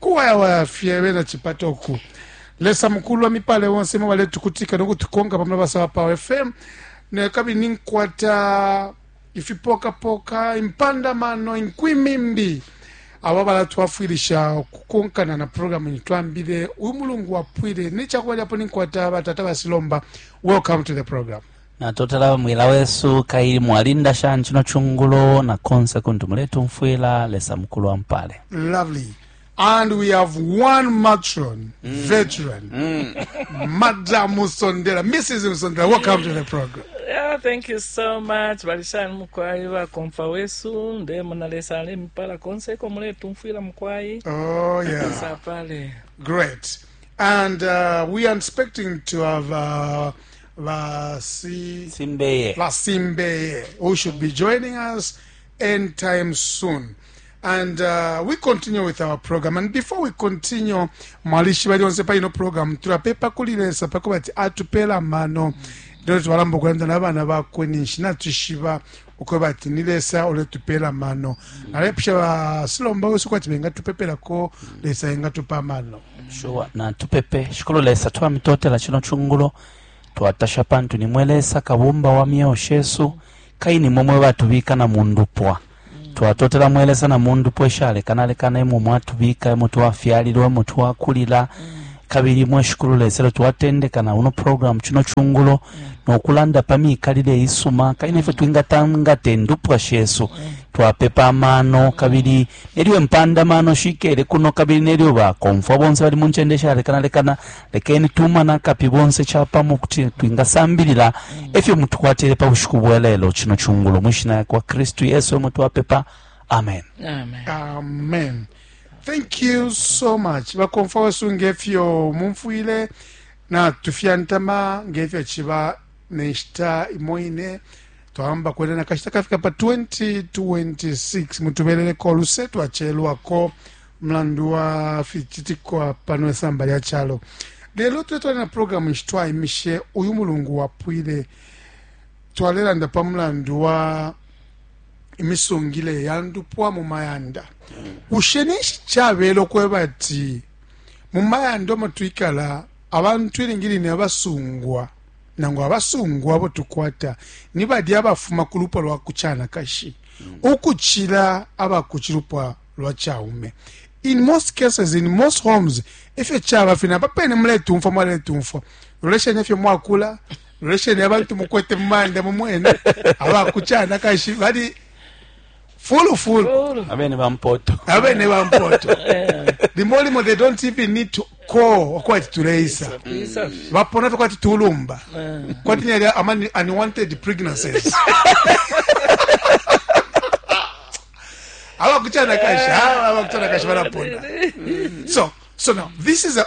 Kuwayawaya fye bena chipata uku. Lesa mukulu amipale bonse mwe baletukutika no kutukonka pa mulabasa wa Power FM. Ne kabili ninkwata ifipokapoka, impanda mano, inkwimi mbi aba balatwafwilisha ukukonkana na programu ino twambile uyu mulungu wapwile. Necakubalyapo ninkwata batata basilomba. Welcome to the program. Natotela mwila wesu kaili mwalinda shani chino chungulo na konse kuntu muletumfwila lesa mukulu ampale lovely and we have one matron mm. veteran mm. madam musondela mrs musondela welcome to the program yeah, thank you so much balishani mukwai bakomfa wesu ndemona lesa alemipala konse ko muletumfwila mukwai oh, yeah. great and uh, we are expecting to have uh, Basi Simbeye. Basimbeye, who should be joining us anytime soon. And uh, we continue with our program. And before we continue, mwalishi bali onse pali no program tulapepa kuli lesa pakuba ati atupela mano ndilo twalamba okulanda n'abaana bakwe ninshi natushiba ukweba ati ni lesa uletupela amano alepusha basilomba wesu kwati bengatupepelako lesa engatupa amano sure natupepe shikulu lesa twamitotela chino chungulo twatasha pantu nimwe lesa kabumba wa myeo shesu kai nimwe mwe batubika na mundupwa twatotela mwelesa na mundupwa eshalekana-lekana imwe mwatubika imwe twafyalilwa imwe twakulila mm. Kabili mwe Shikulu Lesa, ilyo twatendeka na uno programu cino cungulo no kulanda pa mikalile isuma kabili nefyo twingatangate ndupwa shesu twapepa amano kabili nelyo impanda mano shikele kuno kabili nelyo bakomfwa bonse bali mu ncende shalekanalekana lekeni tumana akapi bonse capamo kuti twingasambilila efyo mutukwatile pa bushiku bwa lelo cino cungulo mu ishina ya kwa kristu yesu emwe twapepa amen Amen. Amen. thank you so much bakomfwa wesu ngefyo mumfwile natufyantama ngefyo chiba nenshita imo ine twahamba kwena na kashita kafika pa 2026 mutubeleleko oluse twachelwako mlandu wa fichitikwa pano esamba lya chalo lelo tuletwala na programu nshi twaimishe uyu mulungu wapwile twalelanda pa mulandu wa imisungile ya ndupwa mu mayanda bushe ninshi cabela ukweba ati mu mayanda omo twikala abantu ilingi line abasungwa nangu abasungwa abo tukwata ni balya abafuma ku lupwa lwa kucanakashi mm. ukucila aba ku cilupwa lwa caume in most cases in most homes ifyo caba fina papene muletumfwa mwaletumfwa lolesheni ifyo mwakula lolesheni abantu mukwete mu mayanda mu mwene abakucana kashi bali fulu fulu abene bampoto abene bampoto limo limo they don't even need to call okwati tuleisa bapona tokwati tulumba kwati nyali ama unwanted pregnancies abakucana kashi abakucana kashi balapona so so now this is a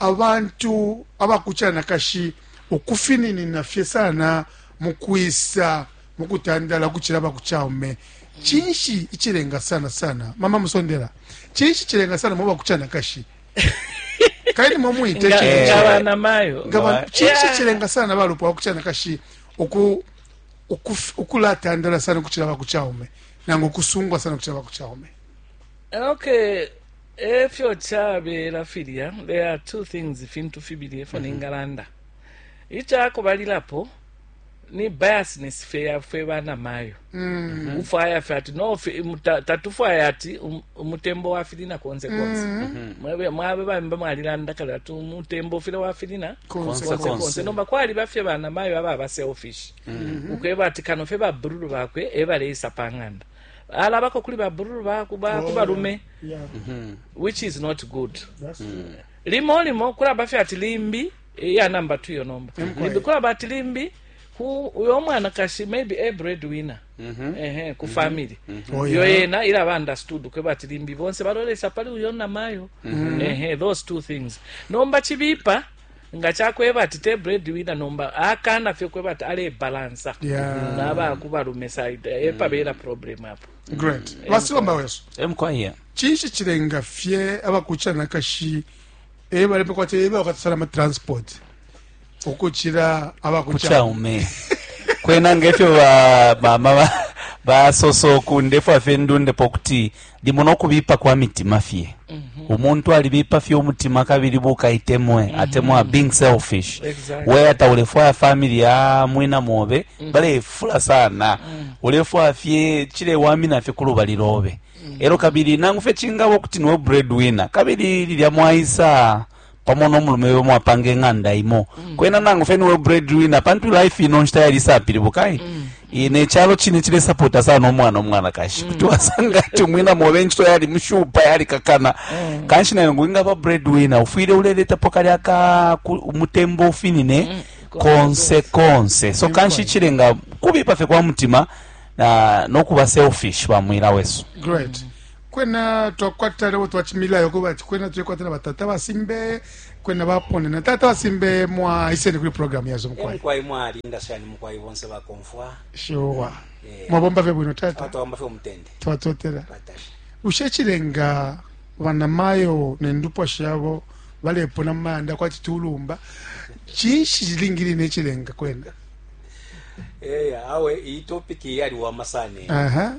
Abantu aba ku canakashi ukufininina fye sana mu kwisa mu kutandala ukucila aba ku caume. Cinshi icilenga sana sana? Mama Musondela, cinshi cilenga sana muba ku canakashi? Kaini mo mwite Nga- cinshi? nga bana mayo Nga ba- Ba- cinshi Yeah. cilenga sana balupwa ku canakashi uku ukuf- ukulatandala sana ukucila aba ku caume nangu ukusungwa sana ukucila aba ku caume? okay e fyo cabela filya there are two things ifintu fibili efo mm-hmm. ningalanda ica kubalilapo ni biasness fe ya fwe bana mayo mm-hmm. ufwaya fe ati no fe tatufwaya ati um, umutembo wa filina konse konse mm-hmm. mwabe mwabe bambe mwalilanda kala ati umutembo file wa filina konse konse, konse. nomba kwali bafye bana mayo aba ba selfish ukweba ati kano fe ba brulu bakwe e baleisa panganda alabako kuli ba brr ba ku ba ku oh, balume yeah. mm -hmm. which is not good mm. limo limo kulaba fye ati limbi eh, ya namba tu yo nomba mm -hmm. limbi kulaba ati limbi ku uyo mwana kashi maybe a breadwinner mm -hmm. ehe ku mm -hmm. family mm -hmm. oh, yeah. yo yena ila ba understood kwe bati limbi bonse balolesa pali uyo na mayo mm -hmm. ehe those two things nomba chibipa nga cakweba ati te breadwinner nomba akana fye kweba ati ale balansa yeah. naba kubalume side mm. epabela problem apo great basibamba wesu emkwaya cinshi cilenga fye abakucana kashi ebalepe kwati ebe bakatusala ma transport ukucila abakucaume kwena ngefyo bamama basosa oku ndefwa fye ndundepo kuti limo no kubipa kwa mitima fye mm -hmm. umuntu alibipa fye umutima kabili bukaitemwe mm -hmm. atemwa being selfish exactly. weya taulefwaya famili ya mwina mobe mm -hmm. balefula sana mm -hmm. ulefwaya fye cilewamina fye ku lubali lobe mm -hmm. elo kabili nangu fye cingaba ukuti niwe breadwinner kabili lilya mwaisa pamo no mulume we mwapanga ing'anda imo mm. kwena nangu fe niwe breadwinner pantu life ino nshita yali isapilibuka eh? mm. e, nechalo chine chilesapota sana omwana omwanakashi mm. kuti wasanga ati umwina mobe enchito yali mushupa yali kakana mm. kanshi nayo ngwingaba breadwinner ufwile uleletapo kali aka umutembo ufinine mm. konse konse so kanshi chilenga kubipa fe kwa mutima na nokuba selfish bamwila wesu Great. Mm. kwena twakwata lebo twachimila yoko bati kwena tuyekwata na batata basimbe kwena bapone na tata basimbe mwa isene kuli program yazo eh, mukwai mukwai mwali ndashani mukwai bonse bakomfwa shiwa eh, mwabomba fe bwino tata twabomba fe umutende twatotela batasha ushe chilenga bana mayo ne ndupwa shabo balepona manda kwati tulumba chinshi chilingili ne chilenga kwena eh awe iyi topic yali wa masane aha uh -huh.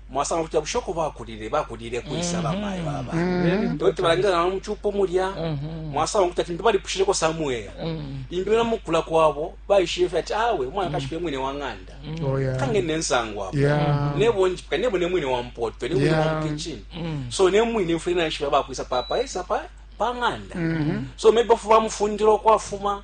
mwasanga kuti abushe uko bakulile bakulile kwisa mm-hmm. bamayo aba mm-hmm. toti balangila nabo mucupo mulya mm-hmm. mwasanga kuti ati balipushileko samwela imbi na mukula kwabo baishile fe ati awe umwana kashike mwine wa ng'anda oh, kange nensango apo nebo njipika nebo ne mwine wa mpoto ne mwine wa mkichin so ne mwine mfule na ishiba bakwisa papa esa pa pa ng'anda so maybe bafu bamufundira okwafuma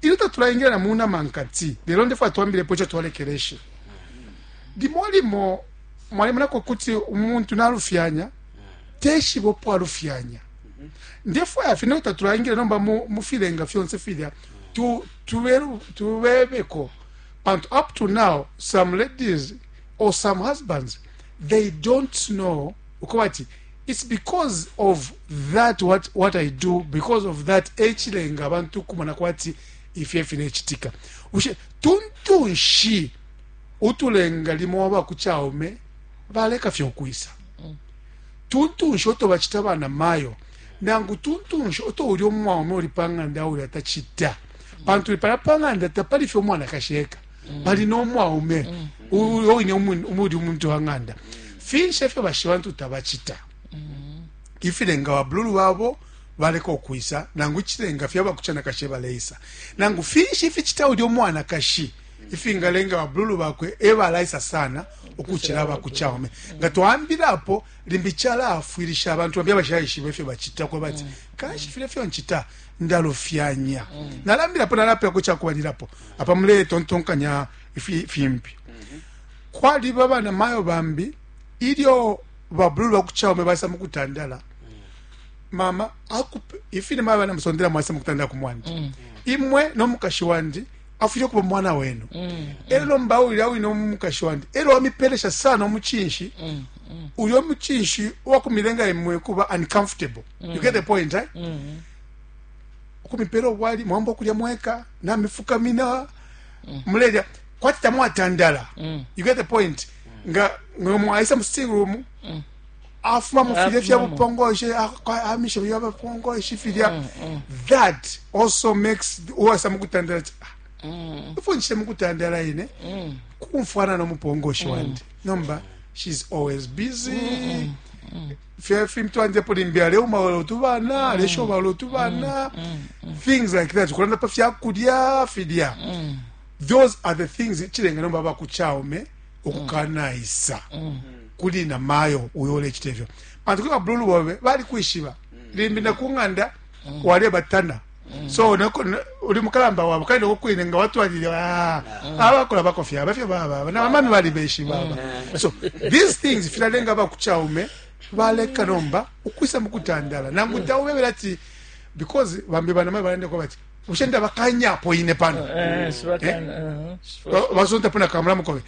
Ilyo tatulaingila na mu nama nkati, lelo ndefwaya twambilepo ico twalekeleshe. Limo limo mwalemonako kuti umuntu nalufyanya, teshiba upo alufyanya. Ndefwaya fye no tatulaingila nomba mu filenga fyonse filya tubebeko, pantu up to now some ladies or some husbands they don't know ukoba ati its because of that what, what i do because of that echilenga abantu kumona kwati ifyo efilechitika bushe tuntunshi utulenga limo waba kuchaume baleka fyo kwisa mm. tuntunshi oto bachita bana mayo nangu tuntunshi oto uli omwaume uli panganda uli atachita pantu ipala panganda tapali fyo mwana kasheka bali no mwaume uyo wine umuli umuntu wa ng'anda finshi efyo bashi bantu tabacita ifilenga babululu babo baleka okwisa nangu ikilenga fyaba kucanakashi baleisa nangu finshi ificita ulya omwanakashi ifingalenga babululu bakwe ebalaisa sana ukucila abakucaume nga twambilapo limbi calaafwilisha abantu bambi abashayishiba ifyo bacita kwebati kanshi file fyo ncita ndalufyanya nalambilapo nalapilako cakubalilapo apa muletontonkanya ifi- fimbi kwaliba bana mayo bambi ilyo babululu bakuchaume basa mukutandala mama akupe ifine mayo bana musondela mwasa mukutandala ku mwandi imwe nomukashi wandi afwile kuba mwana wenu elo lomba ulya wine omukashi wandi elo wamipelesha sana omuchinshi uyo muchinshi wakumilenga imwe kuba uncomfortable you get the point eh? mm -hmm. ukumipela obwali mwamba okulya mweka namifukamina mm. mulelya kwati tamwatandala mm. you get the point mm. nga mwaisa mu sitting room mm. afuma mu filya fya bupongoshe amisha bya bupongoshe filya mm, mm. that also makes uwasa mu kutandala ti ah, mm. ifo nchite mu kutandala ine mm. kumfwana no mupongoshe mm. wandi nomba she's always busy mm -mm. Mm. fye fintu anje po limbi aleuma wala utu bana mm. aleshoba wala utu bana mm, mm, things like that kulanda pa fya kulya filya those are the things ichilenga nomba bakuchaume okukanaisa kuli na mayo uyo olechita ifyo pantu kuli babululu bobe bali kwishiba limbi nakung'anda walebatana so mm. noko uli mukalamba wabo kandi noko kwine nga watwalile ah, mm. abakola bakofya abafyo baba bana bamami bali beshi baba mm. so these things filalenga bakuchaume baleka nomba ukwisa mukutandala nangu taubebela ati because bambi banamai balende kwa bati ushenda bakanyapo ine pano eh, eh, eh, uh-huh. basonta pona kamulamu kobe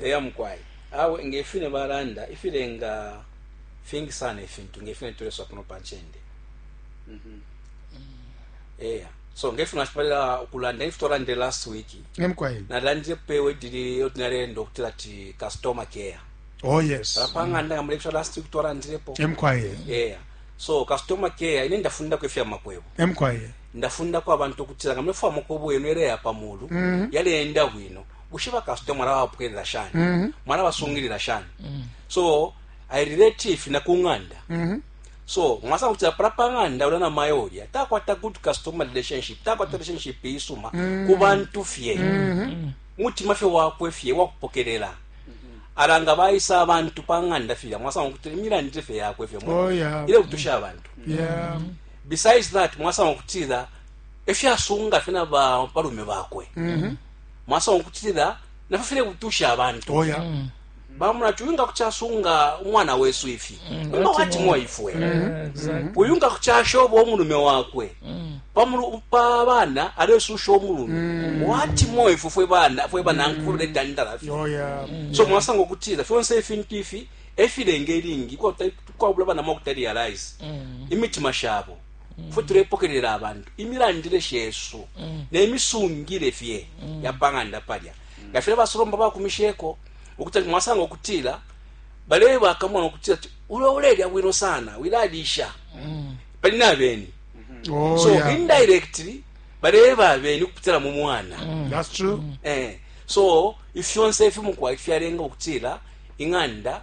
eya mukwai awe ngefine balanda ifilenga fingi sana ifintu ngefine tuleswa kuno panchende mm -hmm. eya so ngefino ashipalila ukulanda ifi twalandile last week emkwai nalandile pewe dili otinalenda okutila ti customer care oh yes apanganda ngamule ifyo last week twalandilepo emkwai eya so customer care ine ndafundako ifya makwebo emkwai ndafundako abantu okutila ngamule fwa makwebo yenu yaleya pamulu mm -hmm. yaleenda bwino bushe bakasuta mwalabapokelela shani mm -hmm. mwalabasungilila shani mm -hmm. so i relate ifi na ku ng'anda mm -hmm. so mwasanga kuti apala pa ng'anda ulya na mayi ulya takwata good customer relationship takwata relationship isuma mm -hmm. ku bantu fye mm -hmm. mutima fye wakwe fye wakupokelela ala nga bayisa abantu pa ng'anda filya mwasanga kuti emilandire fye yakwe fye oh, yeah. ile kutusha abantu yeah. besides that mwasanga kutira efyasunga fye na balume bakwe mm -hmm. mwasanga ukutila nafyo file kutusha abantu oh, yeah. mm. bamona ti uyu nga kucasunga umwana wesu ifi mm, uma watimwa ifwe mm, uyu nga kucashoba umulume wakwe pa bana alesusha umulume watimwa ifwe fwe bana fwe banankulu letandala fye oh, so mwasanga ukutila fyonse ifintu ifi efilenga ilingi kwabula bana mwa kutalialize imitima shabo mm. fwe tulepokelela abantu imilandile shesu mm. nemisungile fye mm. yapanganda palya mm. ngafile basolomba bakumisheko ukuti mwasanga ukutila bale bakamona ukutila ulo ulelya bwino sana wilalisha mm. pali nabeni mm -hmm. oh, so yeah. indirectly baleba abeni ukupitila mu mwana mm. that's true mm. eh so ifyonse ifimukwai fyalenga ukutila ing'anda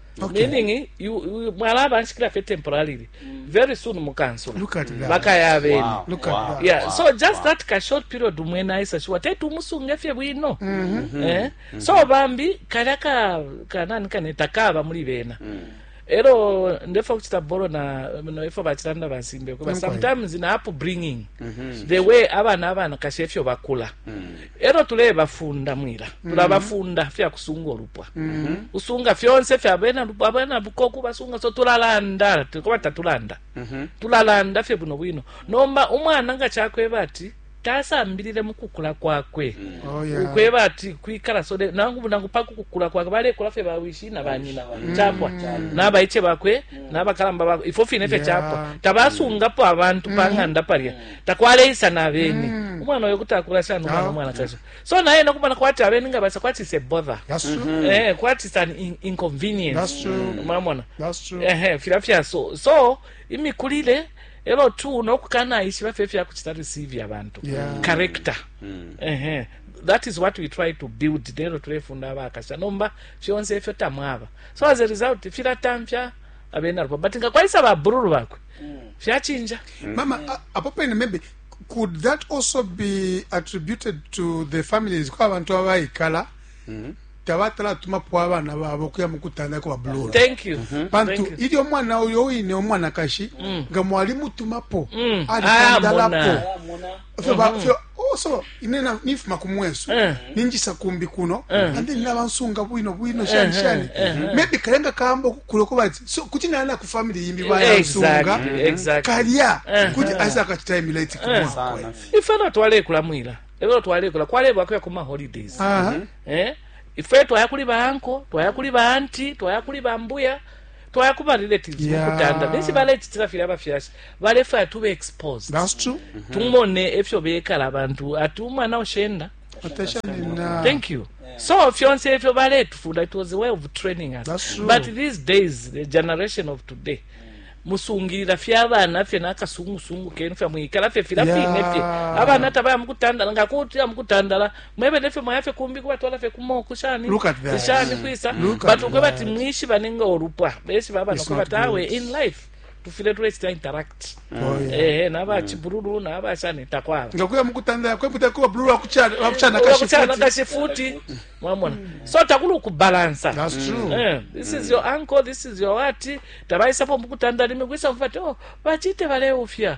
Okay. meaning you- you- mwala abanshikila fye temporarily very soon mukansula Look at that. bakaya abene Wow. Look at that. yeah Wow. so just that ka short period umwene aisa shiwa teti umusunge fye bwino eh? so bambi kalya ka kanani kaneta kaba muli bena ero ndefa kuchita boro na no ifo bachitanda bansimbe kuba Nkwai. sometimes na up bringing the way abana abana kashe fyo bakula elo tulebafunda mwila mm-hmm. tulabafunda fya kusunga ulupwa mm-hmm. usunga fyonse fya bena lupwa abena bukoku basunga so tulalanda tukoba tatulanda mm-hmm. tulalanda fye buno bwino nomba umwana nga chakweba ati tasambilile mukukula kwakwe mm. oh, yeah. ukweba ati kwikala so nangu nangu paku kukula kwakwe balekula fye bawishi na banyina mm. chapwa mm. nabaiche bakwe mm. nabakalamba bakwe ifo fine fye yeah. chapwa tabasungapo abantu mm. pang'anda palya mm. takwaleisa na beni mm. umwana oyo kuti akula sana umwana ah, omwanakashi okay. so naye nokumona kwati abeni nga basa kwati se bother mm -hmm. eh, kwati san in inconvenience mwamona ehe filya fya so so imikulile elo tu nokukanaishiba fye fyakuchita receive abantu yeah. character mm. ehe that is what we try to build nero tulefunda abakasha nomba fyonse efyo tamwaba so as a result filatamfya abena rupa but nga kwaisa babururu bakwe fyachinja mama a- apo pene maybe could that also be attributed to the families ko abantu abaikala tabatala tumapo abana babo okuya mukutanda ko babulula thank you pantu Thank you. ilyo omwana uyo wine omwanakashi nga mwali mutumapo Mm. alitandalapo Ayamona. fyo ba mhm. fyo oh so ine na nifuma ku mwesu eh. ninjisa kumbi kuno eh. and then naba nsunga bwino bwino eh, shani shani maybe kalenga kambo kulo ko bati so kuti na na ku family yimbi ba ya nsunga mm-hmm. exactly kalia kuti asa ka time late ku mwa ife na twale kula mwila elo twale kula kwale ba kwa kuma holidays mm-hmm. eh ife twaya kuli ba anko twaya kuli ba anti twaya kuli ba mbuya twaya ku barelatives yeah. mukutanda ninshi balecitila filya abafyashi balefaya tube exposed That's true. Mm -hmm. tumone efyo bekala abantu ati umwana ushenda thank you yeah. so fyonse efyo baletufunda it was a way of training us but these days the generation of today musungirira fye abana fye n'akasungusungu kenu fye mwikala fye fila fine fye abana tabaya mukutandala ngakutira mukutandala mwebene fye mwaya fye kumbi kubatwala fye kumoku shani shani kwisa but ukwe bati mwishibane nga olupwa beshi baba nokwe bati awe in life tufile tulechita interact oh, eh, eh naba mm. chibululu naba shani takwala ngakuya mukutanda kwe kuta kuba bululu akuchana akuchana kashifuti kashifuti mwamona mm. so takulu ukubalansa that's mm. true eh, this is your uncle this is your what tabaisa po mukutanda limi kwisa mfati oh bachite bale ufya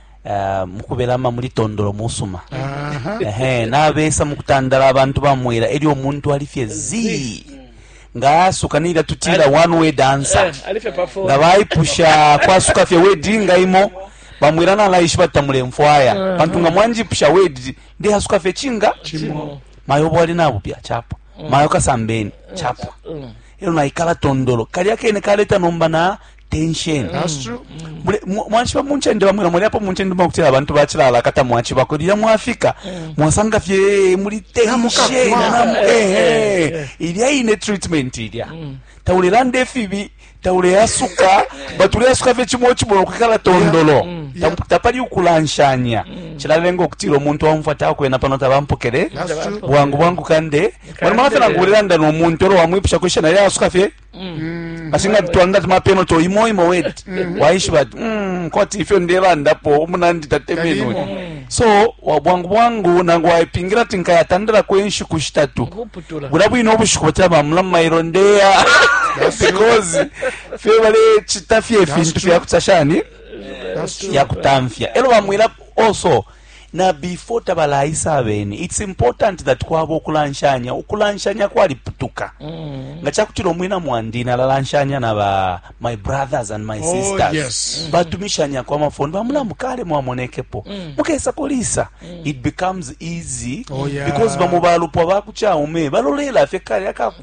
Uh, mukubelama muli tondolo musuma ehe nabesa mukutandala abantu bamwela elyo omuntu ali fye zi nga asuka nira tutira one way dancer eh, nga baipusha kwasuka fye wedi nga imo bamwira nalaishi batamule mfwaya eh. pantu nga mwanjipusha wedi ndi asuka fye chinga mayo bwali nabo bya chapa mm. mayo kasambeni mm. chapa mm. ero naikala tondolo kali akene kaleta nomba na tension mwachiba munchende bamwe namwe lyapo munchende mwakutila abantu bachilala kata mwachiba ko lya mwafika mm. mwasanga fye muli tension ehe ilya ine treatment ilya mm. taulelanda efibi tauleyasuka batuleyasuka fye chimo chimo kukala tondolo mm. tapali ukulanshanya chilalenga okutila omuntu wamufwa takwena pano tabampokele bwangu bwangu kande mwana mwana fye nangu ulelanda nomuntu olo wamwipusha kwishana yasuka fye Mm. Kasi nga twanga tumapeno to imo imo wet mm. waishiba ati mm, kwati ifyo ndebandapo umunandi tatemenwe so wabwangu bwangu nangu waipingira ati nkayatandala kwenshiku shitatu bula bwine obushiku batira bamulamu mairo ndeya because fye balechita fye fintu fyakuta shani yakutamfya elo bamwira also na before tabalaisa abene its important that kwaba ukulanshanya ukulanshanya kwaliputuka mm. nga cakutila umwina mwandi nalalanshanya na ba my brothers and my oh, sisters oh, yes. mm. batumishanya kwa mafondo bamulamu kale mwamonekepo mm. mukesa kulisa mm. it becomes easy oh, yeah. because bamo balupwa bakucaume balolela fye kale akaku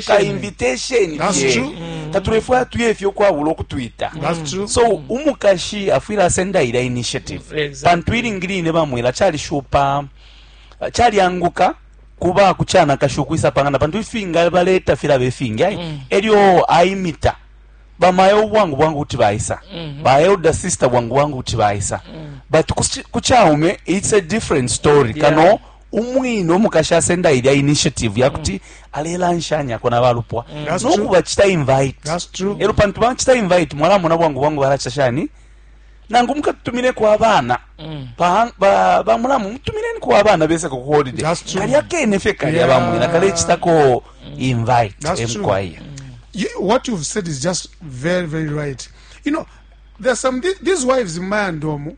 ka invitation fye tatulefwaya tuye fye ukwabula ukutwita so umukashi afwile asenda ila initiative pantu ilingi line bamwela calishupa calyanguka kuba kuchana kashu kuisa pangana pantu ifinga baleta fila befinga mm. elyo aimita bamayo bwangu bwangu kuti baisa mm -hmm. ba elder sister bwangu bwangu kuti baisa mm. but kuchaume it's a different story yeah. kano umwine umukashi asenda ilya initiative ya mm. kuti alelanshanyako na balupwa mm. no kubacita invite elo pantu bacita invite mwalamona bwangu bwangu balacita shani nangu mukatutumineko abana mm. bamulamu mutumineniko abana beseko ku holiday kalya kene fye kalya bamwina kalecitako invite emkwaya what you've said is just very very right you know there are some these wives in mayandomu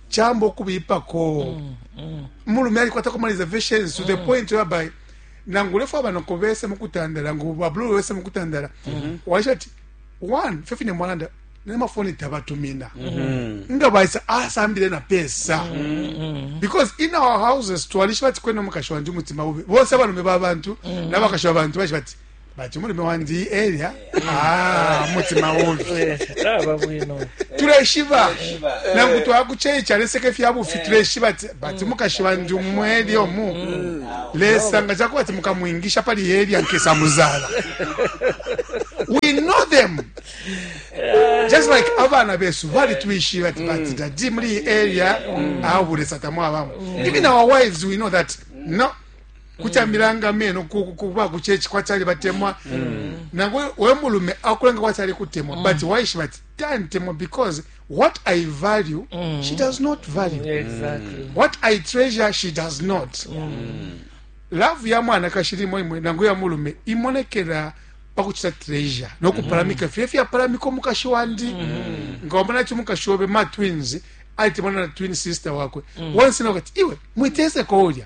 chamba ukubipako mm, mm. mulume alikwatako ma reservations to the mm. point whereby nangu ulefu abanoko bese mukutandala nangu babulu bese mukutandala mm -hmm. waisha ati one fefine mwalanda nemafoni tabatumina mm -hmm. nga baisa asambile na pesa mm -hmm. because in our houses twalisha bati kwena mukashi wanje umutima ube bonse abalume babantu mm -hmm. nabakashi babantu baisha bati bati umulume wandi elya ah, mutima ubi aba bwino tuleshiba nangu twakuceica leseke fya bufi tuleshiba ati bati mukashi wandi umweli omu lesa nga cakuba ati mukamwingisha pali elya nkesa muzala we know them just like abana besu balitwishiba ati bati dadi muli iyi area awo bulesa tamwabamo even our wives we know that no kucambila nga meno kuba ku chechi kwa chali batemwa mm. nangwe we mulume akulenga kwa chali kutemwa mm. but waishiba ati tantemwa because what i value mm. she does not value exactly. Mm. what i treasure she does not mm. love ya mwana kashirimo imwe nangu ya mulume imonekera pakuchita treasure nokuparamika mm. fye fyaparamika omukashi wandi mm. nga wamona ati omukashi obe ma twins aite mwana na twin sister wakwe mm. wonse nokati iwe mwitese koulya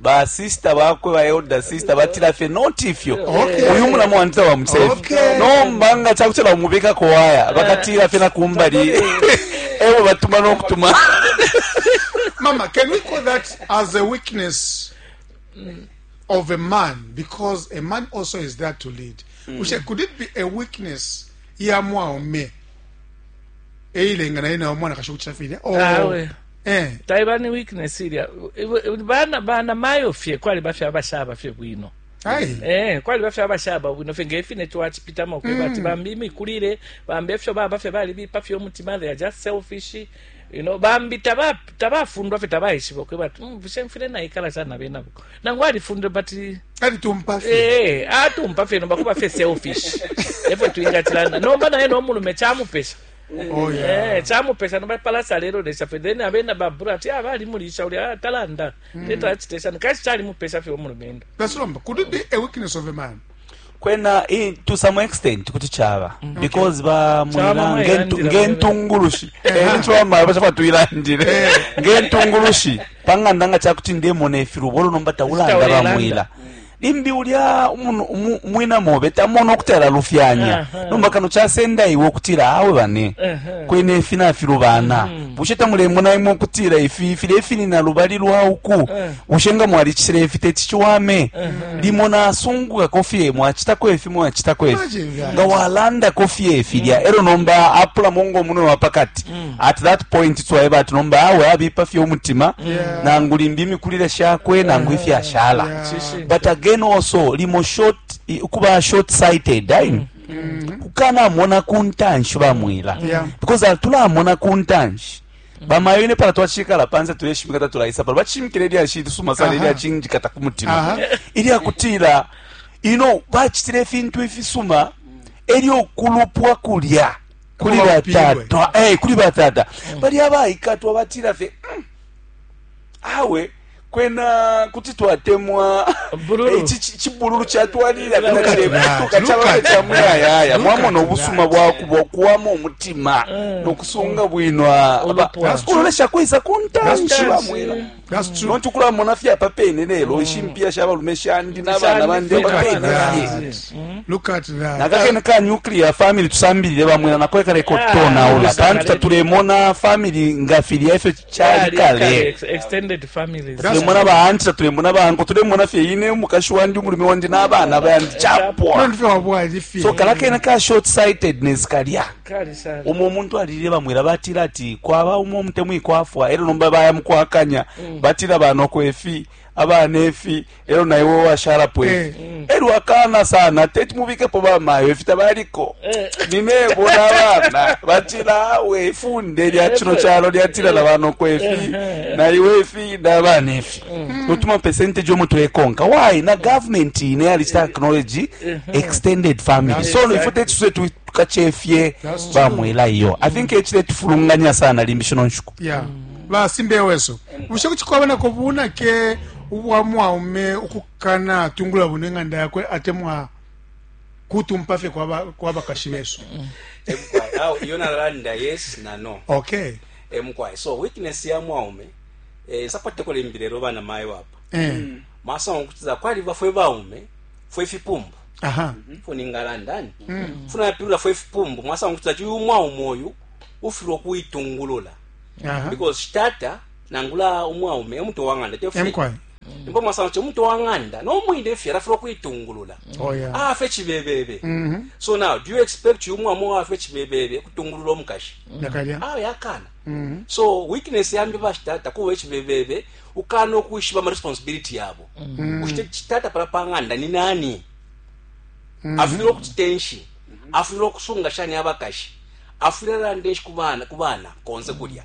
Ba sister bakwe ba elder sister batila fye not ifyo okay. Uyu mulamu wandi tawa mutsefi okay. Nomba nga chakutela umubika kwa waya bakatila fye na kumbali ewe batuma no kutuma Mama can we call that as a weakness mm. of a man because a man also is there to lead mm. Ushe, could it be a weakness ya mwaume eilenga naye nawe mwanakashi ukucita filya oh. awe eh. taiba ni weakness ilya bana bana mayo fye kwali bafye abashaba fye bwino Eh, kwali bafye abashaba bwino fye ngefine twacipitamo kweba ati mm. bambi imikulile bambi efyo baba fye balibipa fye omutima they are just selfish You know, bambi tabafundwa fye tabaishiba ukweba ati mm, bushe mfile naikala shani na benabo nangu alifundile but alitumpa fye eh, eh atumpa fye nomba kuba fye selfish efwe twingatilana nomba naye nomulume chamupesha Oh, yeah. eh, chamupesha nomba palasa lero lesha fye then abena babura ati ah, balimulisha uli ah, talanda mm. teta achitesha nikashi chalimupesha fye omulumendo that's nomba could it be a weakness of a man kwena to some extent kuti chaba mm. because ba mwina ngentungulushi encho eh, mama bacha tuilandire eh. ngentungulushi panganda nga chakuti ndemona ifirubolo nomba taulanda ba mwila limbi ulya mwina mobe tamona okuti alalufyanya nomba kano kyasenda iwe okutira awe bane kwena efi nafilubana mm. bushe tamulemona imwe okutira ifi fili efinina lubali lwa uku Bushe nga mwalicitile ifi teti ciwame? Limo nasungukako fye, mwacitako ifi, mwacitako ifi. Nga walandako fye filya, mm. elo nomba apulamo ngo munwe wa pakati. Mm. At that point twaeba ati nomba awe abipa fye umutima, nangu limbi imikulile shakwe, nangu ifya ashala. But again also, limo short, kuba short sighted, daini. Mm. Mm-hmm. kukanamona kuntanshi bamwila because atulamona kuntanshi bamayo ine pala twacikala panse tuleshimika tatulaisa pala bacimikila ilyashi lisuma sana Aha. ilyacingikata ku mutima Aha. ilyakutila ino bacitile ifintu ifisuma elyo okulupwa kulya kuli Kuba batata Eh, kuli batata bali abaikatwa batila fye "Mm, awe kwena kuti twatemwa eh, chibululu chatwalira kana chirekutuka chavana chamuyayaya mwamona obusuma bwakuba okuwama omutima eh. nokusunga bwino kulolesha kuisa kuntanshi bamwira nonti kulamona fye apa pene lelo ishimpia mm. sha balume shandi nabana bandi apapene nakakene ka nuclear family tusambilile bamwena nakoekaleka ah, otutonaula pantu tatulemona family nga filya ifyo cali kale tulemona baanti tatulemona banko tulemona fye ine umukashi wandi umulume wandi n'abana bandi capwa so kala kena ka short sightedness kalya umo omuntu alilile bamwela batila ati kwaba umo omutemwi kwafwa elo nomba baya mukwakanya mm. batila banoko efi abana efi elo na iwe washalapo ifi eh. mm. elyo akana sana teti mubikepo bamayo ifi tabaliko eh. ninebo nabana batila awe ifunde lya eh, cino calo lyatila na banoko ifi na iwe ifi nabana ifi mm. notuma percentage omo tulekonka why na government ine yalista acknowledge extended family so ifo teti suse tukacefye bamwela iyo i think ecile tufulunganya sana limbi shino nshuku basimbeweso bushe kucikwabonako bunake ubwa mwaume ukukana tungula bune nganda yakwe atemwa kutumpa fye kwa bakashi besu iyo nalalanda yes na no okay emukwaye so weakness ya mwaume eh, sapatekole imbile ero bana mayo wapa eh. mm. masanga okutiza kwali bafwe baume fwe fipumbu aha mm -hmm. funi ngalandani mm -hmm. funa yapirula fwe fipumbu masanga okutiza chuyu mwaume oyu ufirwa kuitungulula aha because shtata Nangula umwaume e mutwe wa ng'anda, te fyo? Emukwae. Ndipo mwasanga kuti umutwe wa ng'anda no mwine fye alafilwa ukuitungulula. Oh, yeah. Afe cibebebe. Mm -hmm. So now, do you expect uyu mwaume wafe cibebebe kutungulula umukashi? Nakalya. Mm. Awe akana. Mm -hmm. So weakness yambi bashitata kuba cibebebe ukana ukwishiba ama responsibility yabo. Mm -hmm. Ushite chitata pala pa ng'anda ni nani? Mm -hmm. Afilwa ukutitenshi. Afilwa ukusunga shani abakashi. Afilwa lande kubana kubana konse kulya.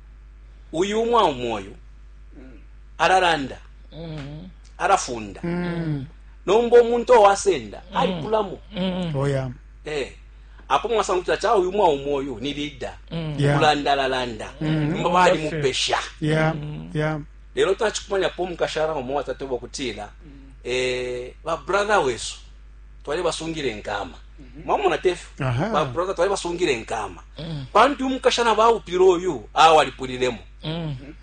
uyu umwaume uyu alalanda mm-hmm. alafunda mm-hmm. nomba omuntu owasenda mm-hmm. alipulamo oh, eh, apo mwasanga kutila ca uyu mwaume uyu ni lida okulanda alalanda nomba balimupesha lelo tacikumanyapo omukashana omo watatoba okutila eh, babrother wesu twali basungile nkama mwamona tefu Aha. baproza twali basungile nkama pantu umukashana baupile uyu awo alipulilemo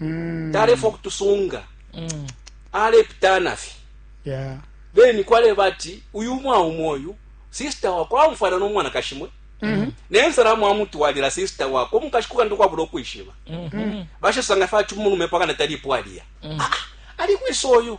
Mm. talefa okutusunga alepitana fye Yeah. then kwaleba ati uyu umwaume uyu sisita wakwe amufwana n'omwanakashi mwe naye nsalamu amutwalira sisita wakwe omukashi kukandi kwabula okwishiba bashasanga fe ati umulume pakana talipo aliya Ah, ali kwisa oyu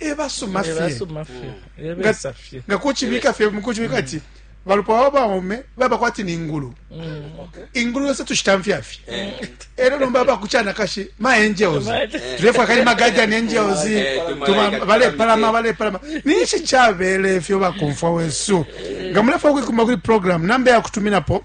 e basuma fye ebasuma fye Mm. ebesa fye nga kucibika fye mukucibika ati balupwa wa baume baba kwati ni ngulu Okay. ingulu yose tushitamfya fye Eh, ero nomba bakucanakashi ma angels Ma- tulefwa kali ma guardian angels Eh, tuma- tuma- balepalama balepalama ninshi cabele fyo bakumfwa wesu nga mulefwa kuikumba kuli program namba yakutuminapo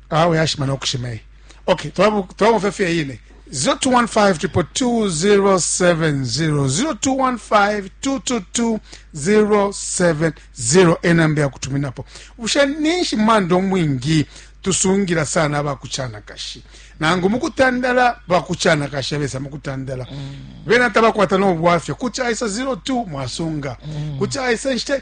awe yashima nokushima iyi okay twabomfya fye yine 0215220770 enamba yakutuminapo bushe ninshi manda omwingi tusungira sana abakuchanakashi nangu mukutandala bakuchanakashi abesa mukutandala mm. bena tabakwata nobwafya kuti aisa 02 mwasunga mm. kuti aisa nshite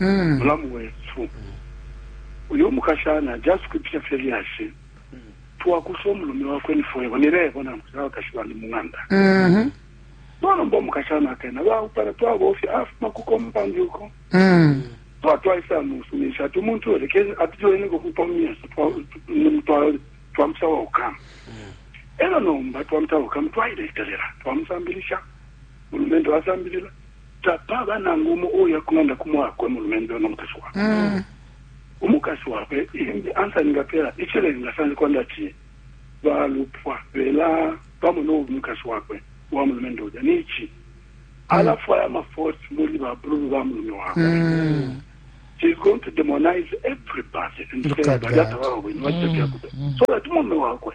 mm. mulamu wesu mm. uyo mukashana just kwipya fye lyashi mm. twakusa omulume wakwe nifwebo nilebo namusa abakashi bandi mung'anda mm -hmm. twalomba omukashana akena baupana twabofya afuma ku compound uko mm. twatwaisa musumisha ati umuntu oleke atujoineko kupa mumyeso twamusawa ukama mm. era nomba twamusawa ukama twailetelera twamusambilisha mulumendo asambilila tapaba nangu umo uya kulanda ku mwakwe mulumendo no mukashi wakwe mm. umukashi wakwe imbi ansa ningapela ichilenga sanje kwanda ati balupwa bela pamo no umukashi wakwe wa mulumendo uja nichi mm. alafwaya amaforce muli babululu ba mulume wakwe mm. she's going to demonize everybody and say badata babo bwino bacita byakuta mm. so that mulume wakwe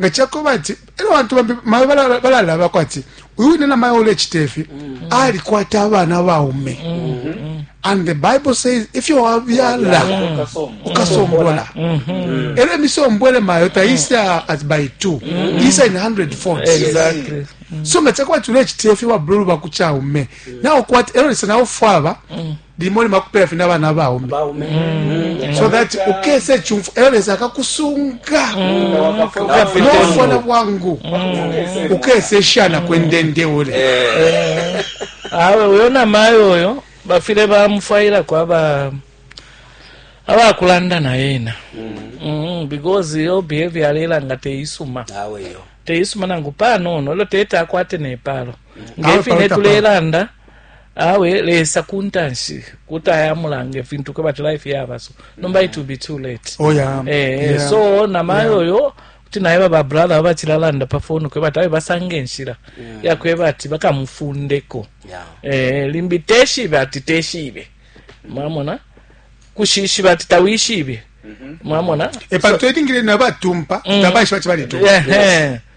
nga cakoba ati era abantu bambi mawe balalabako ati uyu wine na mawe ulecita ifi mm. alikwata abana baume mm-hmm. and the bible says if you have yala ukasombola mm-hmm. era emisombole mayo taisa at by two mm-hmm. isa in hundred folds exactly so nga cakoba ati ulecita ifi babululu bakucaume naokwata era lisa naofwaba limo limo akupela fye nabana baume mm. so that ukesa ecumfu eyo lesa akakusunga mm. nofona bwangu mm. ukesa eshana kwendende ule eh. eh. awe uyo namayo oyo bafile bamufwailako aba abakulanda naye ena because yo behavior alela nga teisuma teisuma nangu panono elo tete akwate nepalo ngefine tulelanda awe lesa kuntanshi kuti ayamulanga ifintu kwebati life yaba so nomba it will be too late oh, yeah. Eh, yeah. so namayo yeah. oyo kuti naye baba brother babachilalanda pa phone kwe bati abe basange nshira yeah. yakwe bati bakamufundeko yeah. eh, limbi teshibe ati teshibe mwamona kushishiba ati tawishibe mwamona epantu elingile nabatumpa mm. tabaishiba ti balitumpa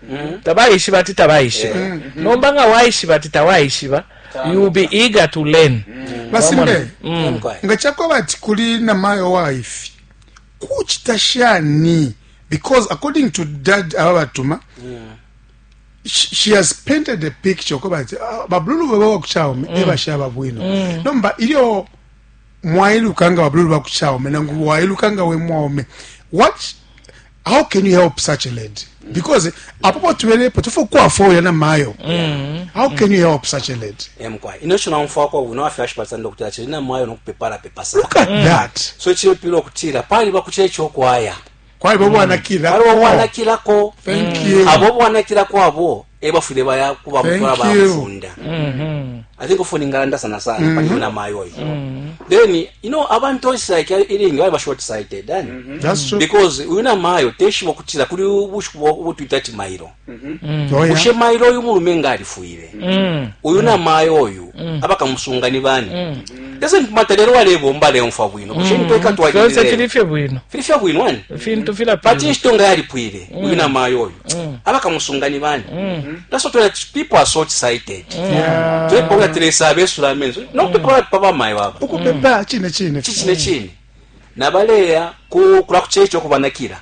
mm-hmm. tabaishiba ti tabaishiba mm-hmm. nomba nga waishiba ti tawaishiba you'll be eager to learn mm-hmm. basimbe mm. nga chakwaba ati kuli namayo waifi kuchita shani because according to dad aba batuma she has painted a picture koba ati ah, babululu baba wakuchaume ebashaba bwino nomba ilyo mwailuka nga babululu ba ku chaume nangu wailuka nga we mwaume what how can you help such a lady mm. because apo po tubele po tufu kwa fo yana mayo mm. how can you help such a lady em kwa ino shona mfwa kwa uno afya shipa sando kutira chiri na mayo no kupepara pepasa look at mm. that so chiri pilo kutira pali ba kuchira choko aya kwaliba ubwanakilako mm. abo ubwanakila kwabo ebafwile baya kuba mutwala bamufunda mm-hmm. i think ofuni ngalanda sana sana mm-hmm. paliyo na mayo oyo mm-hmm. then you know abantu oisike ilingi bali bashort sighted then because uyu na mayo teshiba okutira kuli ubushiku butwita ati mairo Mm-hmm. Oh, bushe mailo oyu mulume nga alifwile mm. uyu na mayo oyu mm. abakamusunga ni bani mm. ese mpumata lero walebomba aleumfwa bwino bushe nitweka twalililefye bwino filifye bwino ani fintu filapila pati inshito nga yalipwile uyu na mayo oyu abakamusunga ni bani that's what that people are so excited twepawula teresa abesula amenso nokupepawula pipa bamayo baba ukupepa chine chine chine chine nabaleya kula kuchecho kubanakira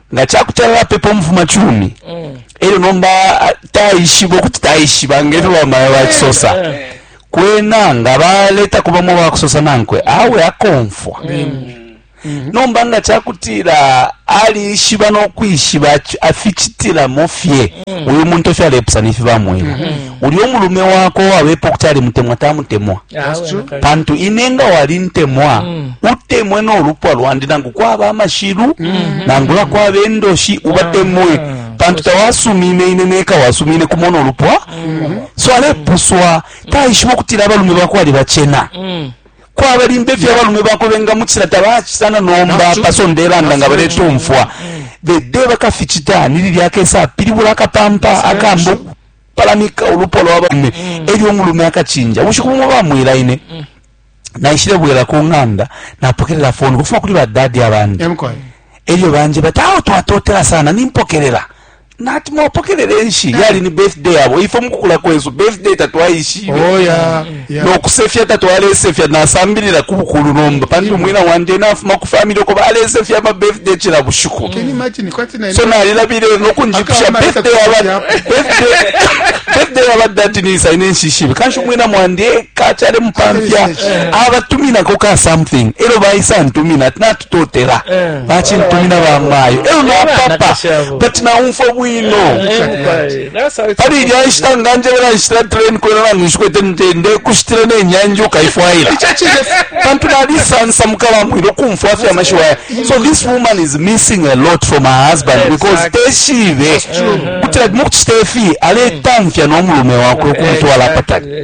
nga ca kuti alapepa umufumacumi mm. elyo nomba taishiba ukuti taishiba ngefyo bamaya bakisosa eh, eh. kwena nga baletako bamo bakusosa nankwe awe akomfwa mm. Mm. nomba nga cakutila alishiba nokwishiba aficitilamo fye uyu muntu efyo alepusana ifi bamweba Ulyo mulume wakwe wabepa ukuti alimutemwa tamutemwa. Pantu ine nga walintemwa mm. utemwe no lupwa lwandi nangu kwaba amashilu mm. nangula kwaba endoshi ubatemwe mm. pantu tawasumine ine neka wasumine kumona olupwa mm. so alepuswa mm. taishiba okutila abalume bakwe ali bacena mm. kwaba limbe fye abalume bakwe bengamucila tabachisana nomba pasondelanda nga baletumfwa mm. the day bakaficita nili lyakesa pilibula akapampa akambu palamika ulupwa lwa baume mm. elyo umulume akacinja ubushiku bumo bamwila ine mm. naishile bwela ku ng'anda napokelela foni kufuma kuli badadi abandi elyo banje bati awo twatotela sana nimpokelela nati mwapokelele nshi yali ni birthday yabo ifo mukukula kwesu birthday tatwaishibe oh, yeah. no kusefya tatwalesefya, nasambilila ku bukulu nomba pantu umwina wandi ena afuma ku famili uko balesefya ama birthday cila bushiku. So nalilabile no kunjipusha birthday yaba birthday yaba dadi nisa ine nshishibe kanshi umwina mwandi eka chale mupamfya abatuminako ka something elo baisa ntumina ati natutotela bachintumina bamayo elo napapa but naumfwa bwino Pali ilya nshita nganjebela nshitila train kwena nangu nshikwete nte ndekushitila ne nyanji ukaifwaila ico cine pantu nalisansamuka bamwile ukumfwa fye amashiwi aya so this woman is missing a lot from her husband because teshibe kuti like mukucita ifi aletamfya no mulume wakwe ukumutwala apatali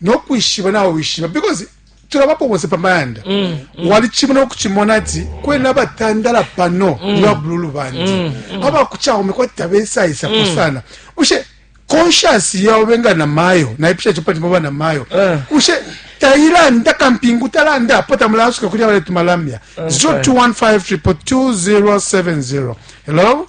no kwishiba nawe wishiba because tulabapo bonse pa mayanda mm, mm. walicimona okucimona ati kwena abatandala pano mm. niba bululu bandi mm, mm. abakucaume kwati tabesaisapo mm. sana bushe conscious yao benga na mayo naipisha chopati mwa na mayo uh. Eh. ushe tailanda kampingu talanda apo tamulasuka kuli abale tumalamya okay. 0215 hello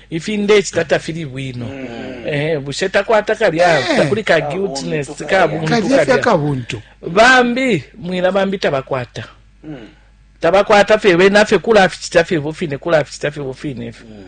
ifi ndecita tafili bwino mm. eh, bushe takwata kalya eh. takuli ka guiltiness oh, kabuntu bambi mwila bambi tabakwata mm. tabakwata fye bena fye kulaficita fye bufine kulaficita fye bufine ifyo mm.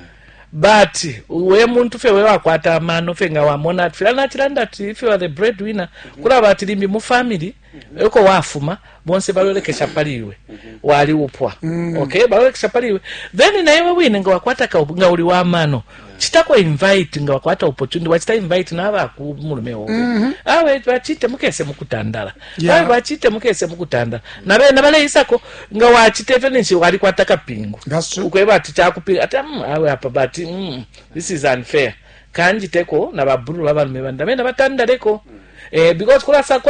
but we muntu fye we wakwata amano fye nga wamona ati fila nacilanda ati if you are the breadwinner mm-hmm. kulaba ati limbi mu family eko wafuma bonse balolekesha pali iwe wali upwa mm. okay balolekesha pali iwe then na iwe wine nga wakwata ka nga uli wa mano chitako invite nga wakwata opportunity wachita invite na aba ku mulume wowe mm -hmm. awe bachite mukese mukutandala yeah. awe bachite mukese mukutandala mm. na bena bale isako nga wachite fyo ninshi wali kwata kapingu ukweba ati chakupinga ati mm, awe apa but mm, this is unfair kanjiteko na baburu babalume banda bena batandaleko mm. eh because kula sakwa